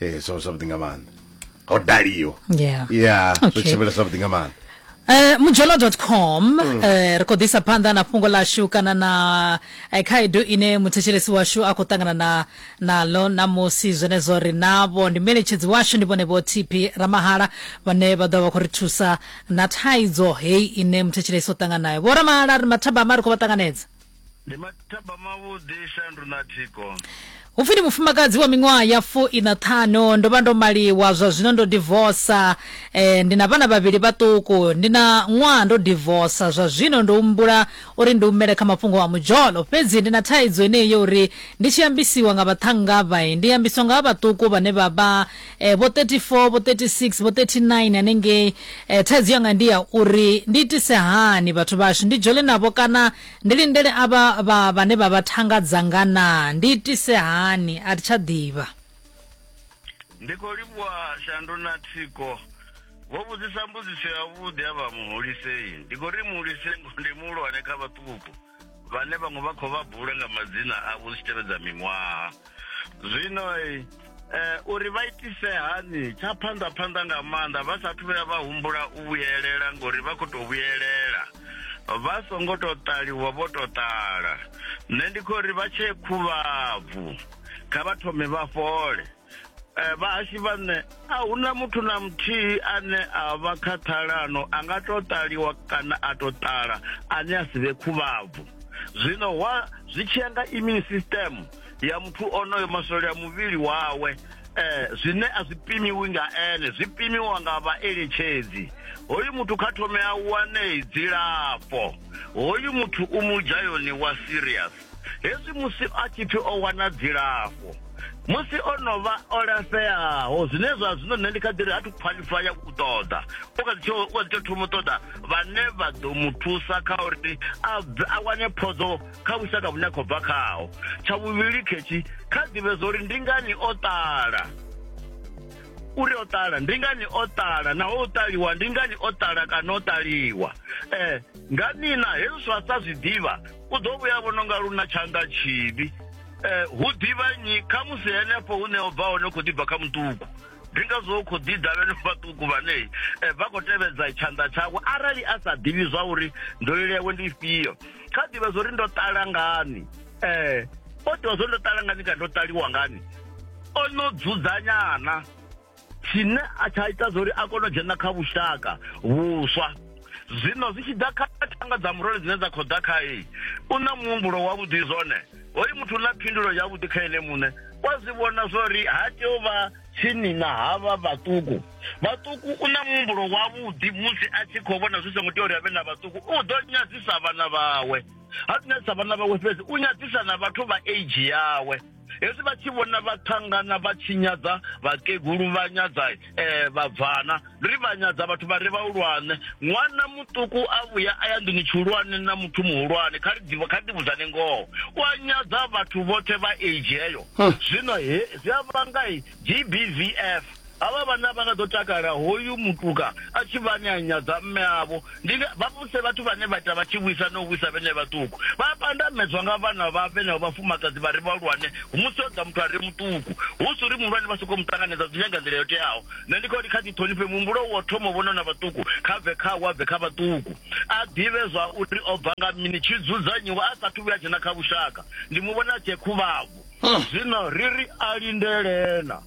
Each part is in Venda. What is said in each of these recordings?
eh so something nga maanḓa ho daliwa yeah yeah so Okay. tshimela something nga maanḓa Eh mujolo.com Mm. eh ri kho ḓisa phanḓa na fhungo ḽashu kana na eh, khaedu ine muthetshelesi washu a khou ṱangana na naḽo na musi zwenezwo ri navho ndi meletshedzi washu ndi vhone vho TP Ramahala vhane vha ḓo vha khou ri thusa na thaidzo heyi ine muthetshelesi o ṱangana nayo vho Ramahala ri mathabama ri khou vha ṱanganedza ndi mathaba mavhuḓi shandu na thiko hu pfi ndi mufumakadzi wa miṅwaha ya fu ina ṱhanu ndo vha ndo maliwa zwa zwino ndo divosa eh, ndi na vhana vhavhili vhaṱuku ndi na ṅwaha ndo divosa zwa zwino ndo humbula uri ndi humele kha mafhungo a mudzholo fhedzi ndi na thaidzo eneyi yo uri ndi tshi ambisiwa nga vhaṱhanga vhae ndi ambiswa nga vha vhaṱuku vhane vha vha eh, vho 34 vho 36 vho 39 hanengei eh, thaidzo yanga ndi ya uri ndi itise hani vhathu vhashu ndi dzhole navho kana ndi lindele avha vha vhane vha vha thanga dzanga na ndi itise hani a thi tsha ḓivha ndi khou livhuwa shandu na thiko vho vhudzisa mbudziso yavhuḓi a vha muhulisei ndi khou ri muhulisei ndi muhulwane kha vhaṱuku vhane vhaṅwe vha khou vha bula nga madzina avho zwi tshi tevhedza miṅwaha zwino eh, uri vha itise hani tsha phanḓa phanḓa nga maanḓa vha sathu vhuya vha humbula u vhuyelela ngori vha khou tou vhuyelela vha songo tou ṱaliwa vho tou ṱala nṋe ndi khou ri vha tshee khuvhabvu kha vha thome vha fhole Eh, vhahashu vha nṋe a hu na muthu na muthihi ane a vha kha ṱhalano a nga to ṱaliwa kana a to ṱala ane a si vhe khuvhabvu zwino wa zwi tshiya nga immune system ya muthu onoyo maswole a muvhili wawe eh zwine a zwi pimiwi nga ene zwi pimiwa nga vhaeletshedzi hoyu muthu kha thome a wane dzilafho hoyu muthu u mu dzhayoni wa serious hezwi musi a tshi pfi o wana dzilafho musi o no vha o lafheaho zwine zwa zwino nṋe ndi kha ḓiri a thu khwaḽifa ya u ṱoḓa u kha ḓi u kha ḓi tsho thoma u ṱoḓa vhane vha ḓo mu thusa kha uri a a wane phodzo kha vhushaka vhune a khou bva khaho tsha vhuvhili khetshi kha ḓivhe zwa uri ndi ngani o ṱala uri o ṱala ndi ngani o ṱala naho o ṱaliwa ndi ngani o ṱala kana o ṱaliwa um nga nina hezwi zwa sa zwi ḓivha u ḓo vhuya vhono nga luna tshanḓa tshivhi eh, hu ḓivha nyi kha musi henefho hune o bva hone khou ḓibva kha muṱuku ndi ngazwo u khou ḓi davheno vhaṱuku vhane eh, vha khou tevhedza tshanḓa tshawe arali a sa ḓivhi zwa uri nḓolele yawe ndi ifhio kha ḓivha zwa uri ndo ṱala ngani um o ḓivha zwa uri ndo ṱala ngani kana ndo ṱaliwa ngani o no dzudzanyana tshine a tsha ita zwa uri a kone u dzhena kha vhushaka vhuswa zwino zwi tshi ḓa kha thanga dza murole dzine dza khou ḓa khae u na muhumbulo wavhuḓi zwone hoyu muthu u na phindulo yavhuḓi kha ene muṋe wa zwi vhona zwa uri ha tea u vha tsini na havha vhaṱuku vhaṱuku u na muhumbulo wavhuḓi musi a tshi khou vhona zwi songo tea uri avhe na vhaṱuku u ḓo nyadzisa vhana vhawe ha nyadzisa vhana vhawe fhedzi u nyadzisa na vhathu vha age yawe hezwi vha tshi vhona vha ṱangana vha tshi nyadza vhakegulu vha nyadza um eh, vhabvana ndi ri vha nyadza vhathu vha re vhahulwane ṅwana muṱuku a vhuya a ya nḓuni tshihulwane na muthu muhulwane kha ri ḓivha kha ri ḓivhudzane ngoho u a nyadza vhathu vhoṱhe vha age heyo zwino he zwi a vhanga g b v f Havha vhanna vha nga ḓo takala hoyu mutuka a tshi vha ane a nyadza mme avho. Ndi nga, vha vhuse vhathu vhane vha ita vha tshi vhuisa na u vhuisa vhenevho vhaṱuku. Vha a pandamedzwa nga vhana vha vhenevho vhafumakadzi vha re vhahulwane musi ho ḓa muthu a re muṱuku. Hu si uri muhulwane vha sokou mu ṱanganedza, zwi nyanga nḓila yo teaho. Nṋe ndi kha uri kha ḓi ṱhonifhe muhumbulo wa u thoma u vhona na vhaṱuku, kha bve khawo a bve kha vhaṱuku. A ḓivhe zwa uri o bva nga mini, tshi dzudzanyiwe a sa athu vhuya a dzhena kha vhushaka. Ndi mu vhona a tshee khuvhabvu. Zwino ri ri a lindele na.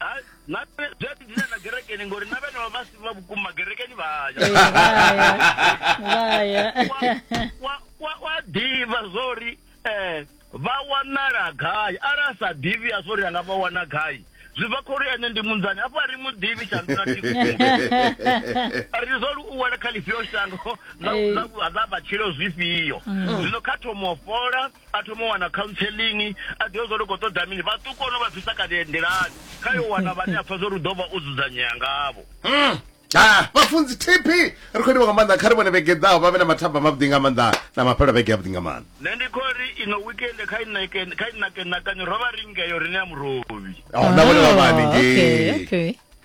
Ha, na zwi a ḓi dina na gerekeni ngori na vhene vha si vha vhukuma gerekeni vha ya Eh, vha ya vha ya Wa- wa- wa ḓivha zwori um vha wanala gai arali a sa ḓivhi a zwori anga vha wana gai zwi bva khori ene ndi munzani hafho a ri mu ḓivhi shandula ri zwori u wela kha lifhio shango ḽa- Eh. ḽa ḽa matshilo zwifhio zwino kha thomo fola a thoma u wana counseling a ḓivha zwa uri khou ṱoḓa mini vhaṱuku ono vha bvisa kale nḓilani kha yo wana vhane a pfa zwa uri u ḓo vha o dzudzanyea ngavho mm. ah, vhafunzi tp ri khou livha nga maanḓa kha ri vhone vhege ḓaho vha vhe na mathaba mavhuḓi nga maanḓa na mafhelo vhege avhuḓi nga maanḓa nṋe ndi khou ri ino wikende kha inakenakanyo ro vha ri ngeyo rine ya murovhi oh, na vhone vha vha haningei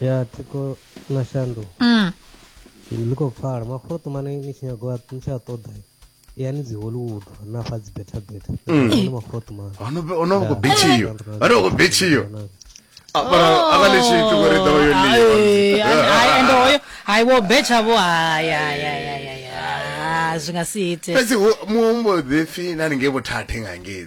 ya thi khou na shandu mm. ḽi khou pfala mafhuro ṱumane ni tshi nyago ni tshi a ṱoḓa yani dzi hollywood na fa dzi beta beta mm. mafhuro ṱumane ono ono khou betshiyo ono khou betshiyo akaleshithu kuri ḓo yo liende hoyo hayi wo betsha vho hayayayaya zwi nga si ite fhedzi muhumbo ḓipfi na ningei vhothathe nga ngei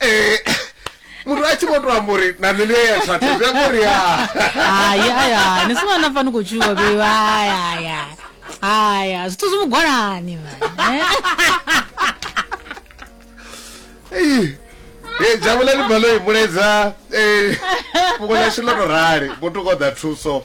Eh, muthu a tshi vho to amba uri na nṋe ndi ya thathe zwi amba uri ya hayi hayi hayi ni sina na fani khou tshuwa beiwa hayi hayi hayi hayi hayi zwithu zwi mugwalani mani eh? Ei, eh, jabulani baloyi mulaedza eh, fhungo ḽashu ḽo to rali muthu koḓa thuso